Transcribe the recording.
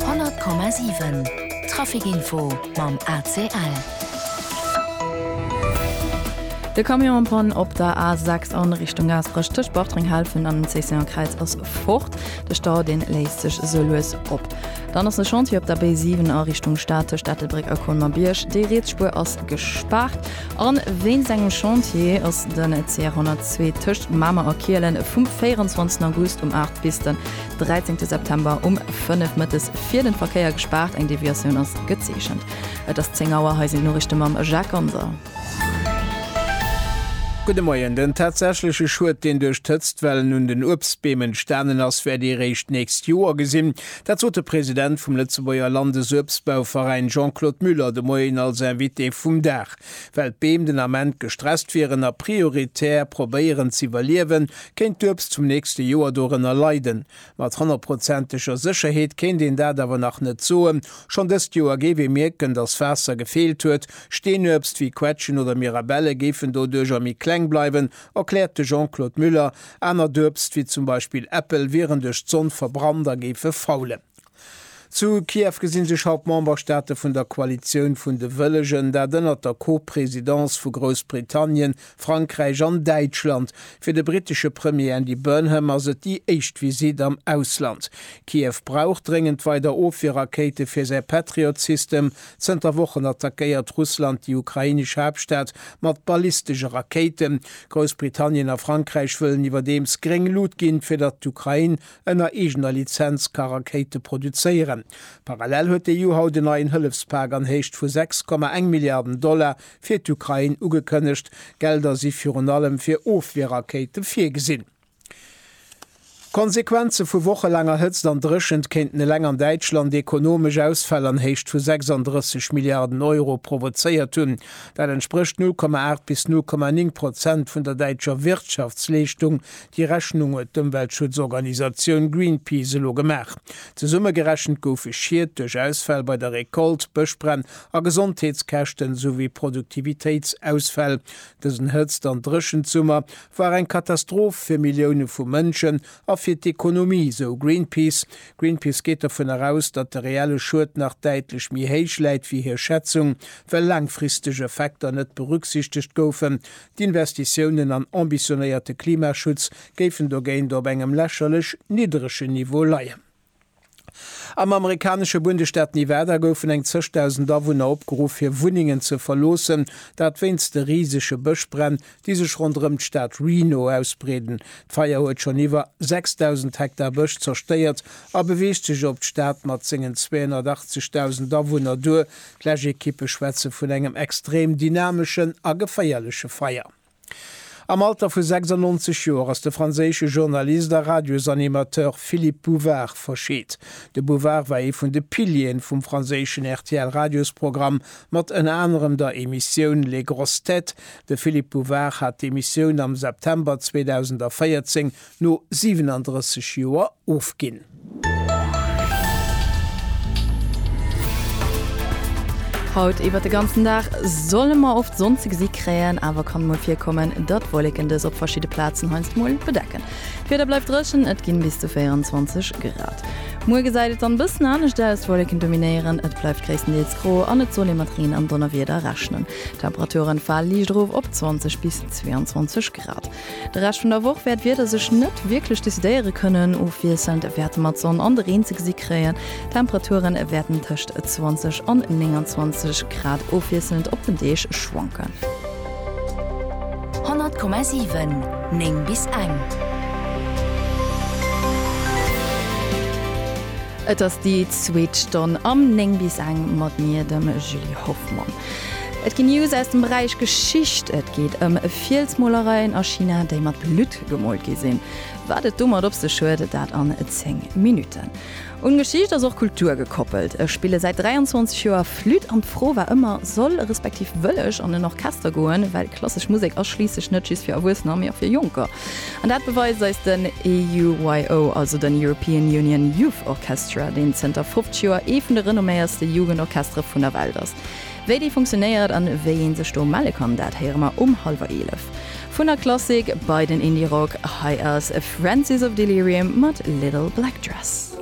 100,7 Trafic-Info mam ACL. De Camion en panne op der A6 an Richtung Gaasperech tëscht Bartreng-Helfen an dem Cécéon-Kräiz ass fort. De Stau deen léisst sech sou lues op. Dann ass e Chantier op der B7 a Richtung Stad tëscht Ettelbréck a Colmer-Bierg. Déi Rietsspuer ass gespaart an wéinst engem Chantier ass den CR 102 tëscht Mamer a Kielen vum 24 August um 8 bis den 13 September um 5 Mëttes fir den Verkéier gespaart, eng Deviatioun ass gezeechent. Et ass 10 Auer, hei sinn d'Noriichte mam Jacques Ganser. Gudde Moien, Den tatsächleche Schued, deen duerch d'Hëtztwellen un den Uebstbeem entstanen ass, wäert ee réischt d'nächst Joer gesinn. Dat sot de President vum Lëtzebuerger Landesuebstbauveräin Jean-Claude Muller de Moien als Invité vum Dag. Well d'Beem den Ament gestresst wieren a prioritär probéieren z'iwwerliewen, Kéint d'Uebst zum nächste Joer dorënner leiden? Mat honnertprozenteger Sécherheet kéint een dat awer nach net soen. Schonn dëst Joer géif ee mierken, datt Waasser gefeelt huet. Steenuebst wéi Quetschen oder Mirabelle géifen doduercher méi kleng bleiwen, erkläert de Jean-Claude Muller. Anert Uebst, wéi zum Beispill Äppel, wieren duerch d'Sonn verbrannt a géife faulen. Zu Kiew gesi sech haut d'Memberstaate vun der Koalitioun vun de Wëllegen, dat ënnert der Co-Presidence vu Groussbritannien, Frankräich an Däitschland. Fir de brittesche Premier Andy Burnham ass et déi éischt Visitt am Ausland. Kiew brauch dréngend weider Ofwierrakéite fir säi Patriot-System. Zënter Wochen attackéiert Russland déi ukrainesch Haaptstad mat ballistesche Rakéiten. Groussbritannien a Frankräich wëllen iwwerdeems gréng Lut ginn, fir datt d'Ukrain Ënner eegener Lizenz ka Rakéite produzéieren. Parallel huet d'EU haut en neien Hëllefspak an Héicht vu 6,1 Milliarden Dollar fir d'Ukrain ugekënnegt. D'Gelder si virun allem fir Ofwierrakéite virgesinn. D'Konsequenze vu wochelaanger Hëtzt an Dréchent kéinten eleng an Däitschland ekonomesch Ausfäll an Héicht vu 36 Milliarden Euro provozéiert hunn. Dat entsprécht 0,8 bis 0,9 Prozent vun der däitscher Wirtschaftsleeschtung, Déi Rechnung huet d'Ëmweltschutzorganisatioun Greenpeace elo gemaach. Zesummegerechent goufe Schied duerch Ausfäll bei der Recolte, Bëschbränn a Gesondheetskäschten, esouwéi Produktivitéitsausfäll. Dësen Hëtzt an Dréchensummer war eng Katastroph fir Millioune vu Mënschen a fir d'Ekonomie, sou Greenpeace. Greenpeace geet dovun eraus, datt de reelle Schued nach däitlech méi héich läit wéi hir Schätzung, well laangfristeg Effekter net berücksichtegt goufen. D'Investitiounen an ambitionéierte Klimaschutz géifen dogéint op engem lächerlech nidderegen Niveau leien. Am amerikanesche Bundesstaat Nevada goufen eng zeg Dausend Awunner opgeruff fir Wunnengen ze verloossen, dat wéinst de risege Bëschbränn, déi sech ronderëm d'Stad Reno ausbreeden. D'Feier huet schonn iwwer 6.000 Hektar Bësch zerstéiert a beweegt sech op d'Stad mat sengen 280.000 Awunner duer, D'Läschekippe schwätze vun engem extrem dynameschen a geféierleche Feier. Am Alter vu 96 Joer ass de franséische Journalist a Radiosanimateur Philippe Bouvard verscheet. De Bouvard war ee vun de Pilieren vum franséischen RTL-Radiosprogramm mat ënner anerem der Emissioun Les grosses têtes. De Philippe Bouvard hat d'Emissioun am September 2014 no 37 Joer ofginn. Haut iwwert de ganzen Dag solle mer oft Sonn ze gesi kréien, awer kann mol virkommen, datt Wolleken dës op verschidde Plazen heiansdo mol bedecken. D'Wieder bleift dréchen, et ginn bis zu 24 Grad. Muer gesäit et dann bëssen anescht aus, Wolleken dominéieren, et bleift gréisstendeels gro an et soll ee mat Reen an Donnerwieder rechnen. D'Temperaturen fale liicht erof op 20 bis 22 Grad. De Rescht vun der Woch wäert d'Wieder sech net wierklech decidéiere kënnen, ofwiesselnd wäerte mer d'Sonn an de Reen ze gesi kréien. D'Temperature wäerten tëscht 20 an 29 Grad ofwiesselnd op den Deeg schwanken. 100,7 9 bis eng. Et ass déi zweet Stonn am 9 bis eng mat mir, dem Julie Hoffmann. Et ginn News aus dem Beräich Geschicht, et geet ëm Fielsmolereien a China, déi mat Blutt gemoolt gi sinn. Wat et domat op sech huet, dat an 10 Minutten. Un Geschicht ass och Kultur gekoppelt. Ech spille säit 23 Joer Flütt an d'Fro war ëmmer, soll, respektiv wëll ech an en Orchester goen? Well klassesch Musek ass schliisslech net just fir Erwuessener, mee och fir Jonker. An dat beweist eis den EUYO, also den European Union Youth Orchestra, deen zënter 50 Joer ee vun de renomméierste Jugendorchestere vun der Welt ass. Wéi dee funktionéiert an wéi een sech do melle kann, dat héiere mer um hallwer eelef. Vun der Klassik bei den Indie-Rock, hei ass Francis of Delirium mat Little Black Dress.